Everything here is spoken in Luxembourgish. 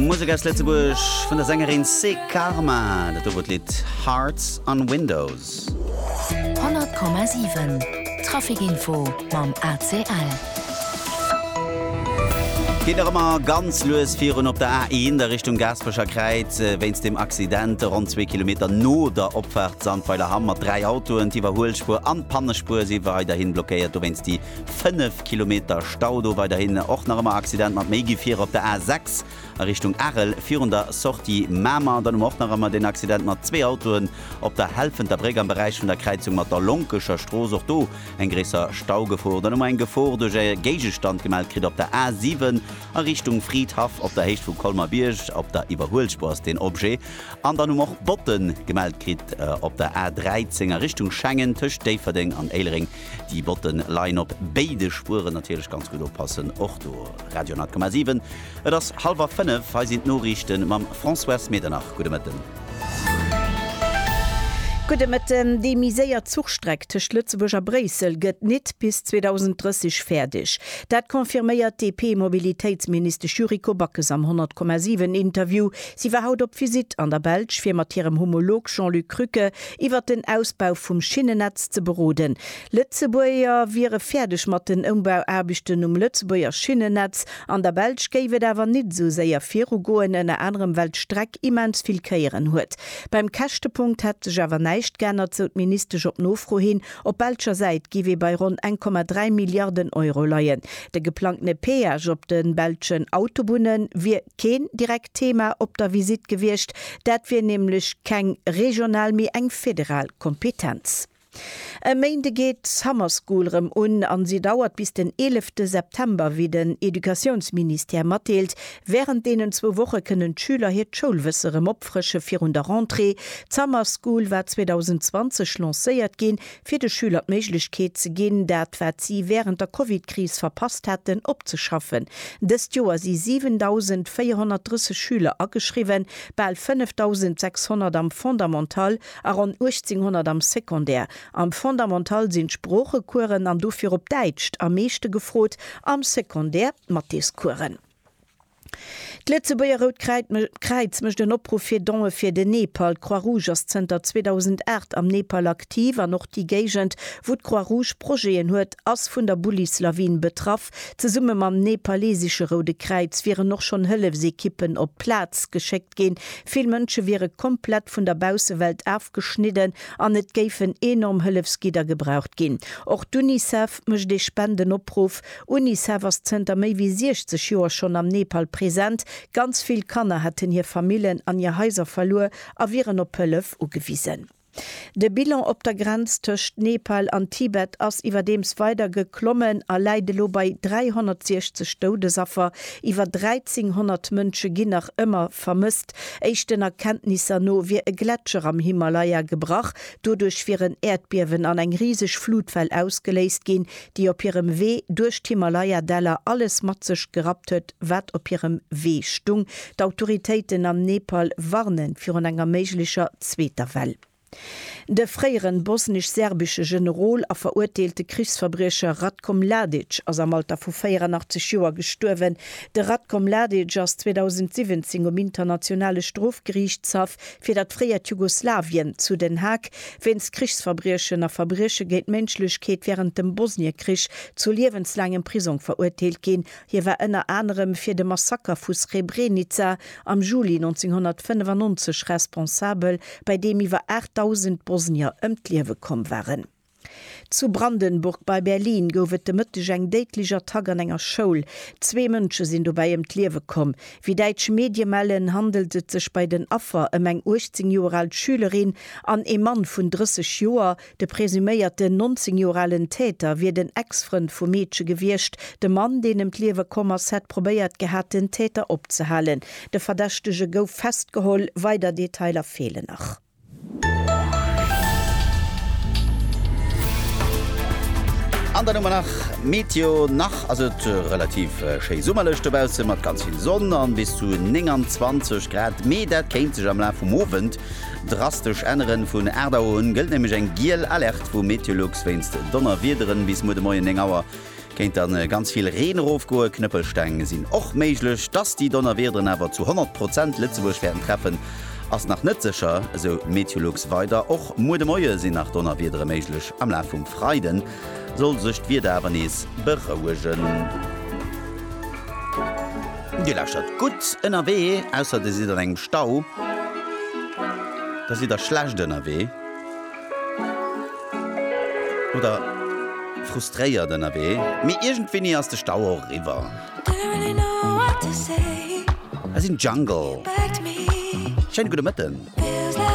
Musek aus Lëtzebuerg vun der Sängerin Sé Karma, dat do wor d'Lidd Hearts on Windows. 100,7 Traficinfo mam ACL. Geet nach ëmmer ganz lues virun op der A1 a Richtung Gaasperecher Kräiz. Wéinst dem Accident ronn zwee Kilometer no der Opfaart Sandweiler Hamm mat dräi Autoen. D'Iwwerhuelspuer an d'Pannespuer si weiderhi blockéiert. Dowéinst déi 5 Kilometer Stau do. Weiderhin och nach ëmmer Accident mat méi Gefierer op der A6 a Richtung Arel virun der Sortie Mamer. Dann hu mer och nach ëmmer deen Accident mat zwee Autoen op der Helfenter Bréck am Beräich vun der Kräizung mat der Lonkescher Strooss. Och do eng gréisser Staugefor. Dann hu mer eng Gefor duerch e Géigestand gemellt kritt op der A7 a Richtung Fridhaff op der Héicht vum Colmer-Bierg. Op der Iwwerhuelspuer ass deen Objet. An dann hu mer och Botten gemellt kritt op der A13 a Richtung Schengen tëscht Déifferdeng an Éilereng. Déi Botten leien op béide Spueren, natierlech ganz gutt oppassen och do. Radio,7 Et ass hallwer 5, hei sinn d'Noriichten mam Françoise Medernach. Gudde Mëtten. Gudde Mëtten. Déi méi séier Zuchstreck tëscht Lëtzebuerg a Bréissel gëtt nit bis 2030 fäerdeg. Dat confirméiert d'DP-Mobilitéitsministesch Yuriko Backes am 100,7 Interview. Si war haut op Visitt an der Belsch, fir mat hirem Homolog Jean-Luc Krücke iwwert den Ausbau vum Schinnennetz ze beroden. Lëtzebuerger wiere fäerdeg mat den Ëmbauaarbechten um Lëtzebuerger Schinnennetz. An der Belsch géif et awer nit esou séier viru goen, ënner anerem well d'Streck immens vill Kéieren huet. Beim Käschtepunkt hätt sech awer näischt geännert, sou d'Ministesch op Nofro hin. Op belscher Säit géif ee bei ronn 1,3 Milliarden Euro leien. De geplangtene Peage op de belschen Autobunne wier. keen direkt Thema op der Visitt gewiescht, dat wier nämlech keng regional, mee eng federal Kompetenz. E Méinde geet d'Summer School erëm un a si dauert bis den eelefte September, wéi den Educatiounsministère matdeelt. Wärend deenen zwou Woche kënnen d'Schüler hiert Schoulwësse erëm opfrësche virun der Rentrée. D'Summer School war 2020 lancéiert ginn, fir de Schüler d'Méiglechkeet ze ginn, dat wat si wärend der Covid-Kris verpasst hätten, opzeschaffen. Dëst Joer si 7.430 Schüler ageschriwwen, bal 5.600 am Fondamental a ronn 1.800 am Secondaire. Am Fondamental sinn d'Sproochecoursen an dofir op Däitscht am meeschte gefrot, am Secondaire d'Mathéscoursen. D'Lëtzebuerger Rout Kräiz mécht en Opruff fir Don'e fir den Nepal. D'Croix-Rouge ass zënter 2008 am Nepal aktiv an och déi Géigend, wou d'Croix-Rouge Projeten huet, ass vun der Bullis-Lawin betraff. Zesumme mam nepalesesche Roude Kräiz wieren och schonn Hëllefsekippen op d'Plaz geschéckt ginn. Vill Mënsche wiere komplett vun der Baussewelt afgeschnidden an et géifen enorm Hëllefsgidder gebraucht ginn. Och d'Unicef mécht ee Spendenoppruff Unicef ass zënter méi wéi 60 Joer schonn am Nepal present. Ganz vill Kanner hätten hir Famillen an hir Haiser verluer a wieren op Hëllef ugewisen. De Bilan op der Grenz tëscht Nepal an Tibet ass iwwerdeems weider geklommen a läit elo bei 360 Doudesaffer. Iwwer 1.300 Mënsche ginn nach ëmmer vermësst. Éischten Erkenntnisser no wier e Gletscher am Himalaya gebrach. Doduerch wieren Äerdbiewen an eng riseg Flutwell ausgeléist ginn, déi op hirem Wee duerch d'Himalaya-Däller alles mat sech gerappt huet, wat op hirem Wee stung. D'Autoritéiten am Nepal warne virun enger méiglecher zweeter Well. De fréieren bosnisch-serbische Generol a veruerteelte Krichsverbriecher Ratko Mladic ass am Alter vu 84 Joer gestuerwen. De Ratko Mladic ass 2017 um Internationale Strofgeriichtshaff fir dat fréiert Jugoslawien zu Den Haag wéinst Krichsverbriechen a Verbrieche géint d'Ménschlechkeet wärend dem Bosniekrich zu liewenslaangem Prisong verurteelt ginn. Hie war ënner anerem fir de Massaker vu Srebrenica am Juli 1995 responsabel, bei deem iwwer 8.000 Bosnier ëm d'Liewe komm waren. Zu Brandenburg bei Berlin gouf et de Mëtteg eng déidlech Attack an enger Schoul. Zwee Mënsche sinn dobäi ëm d'Liewe komm. Wéi däitsch Medie mellen, handelt et sech bei den Affer ëm eng 18 Joer al Schülerin an ee Mann vun 30 Joer. De presuméierten 19 Joer alen Täter wier den Ex-Frënd vum Meedche gewiescht. De Mann, deen ëm d'Liewe komm ass, hätt probéiert gehat, den Täter opzehalen. De Verdächtege gouf festgeholl, weider Detailer feelen nach. An dann hu mer nach Meteo, nach ass et relativ schéi summerlech dobaussen, mat ganz vill Sonn an bis zu 29 Grad, mee dat kéint sech am Laf vum Owend drastesch änneren. Vun 8 Auer un gëllt nämlech eng giel Alerte vu Meteolux wéinst Donnerwiederen bis muer de Moien 9 Auer. Kéint dann ganz vill Reen erofgoen. Knëppelsteng sinn och méiglech. Dass déi Donnerwiederen awer zu 100 Prozent Lëtzebuerg wäerten treffen, ass nach net sécher, esou d'Meteolux weider. Och muer de Moie sinn nach Donnerwiedere méiglech. Am Laf vum Freide soll sech d'Wieder awer nees berouegen. Dir lauschert gutt ënnerwee, ausser dir sidd an engem Stau. Da sidd der schlecht ënnerwee. Oder frustréiert ënnerwee, mee iergendwéini ass de Stau och eriwwer. Hei sinn Jungle. Schéine gudde Mëtten.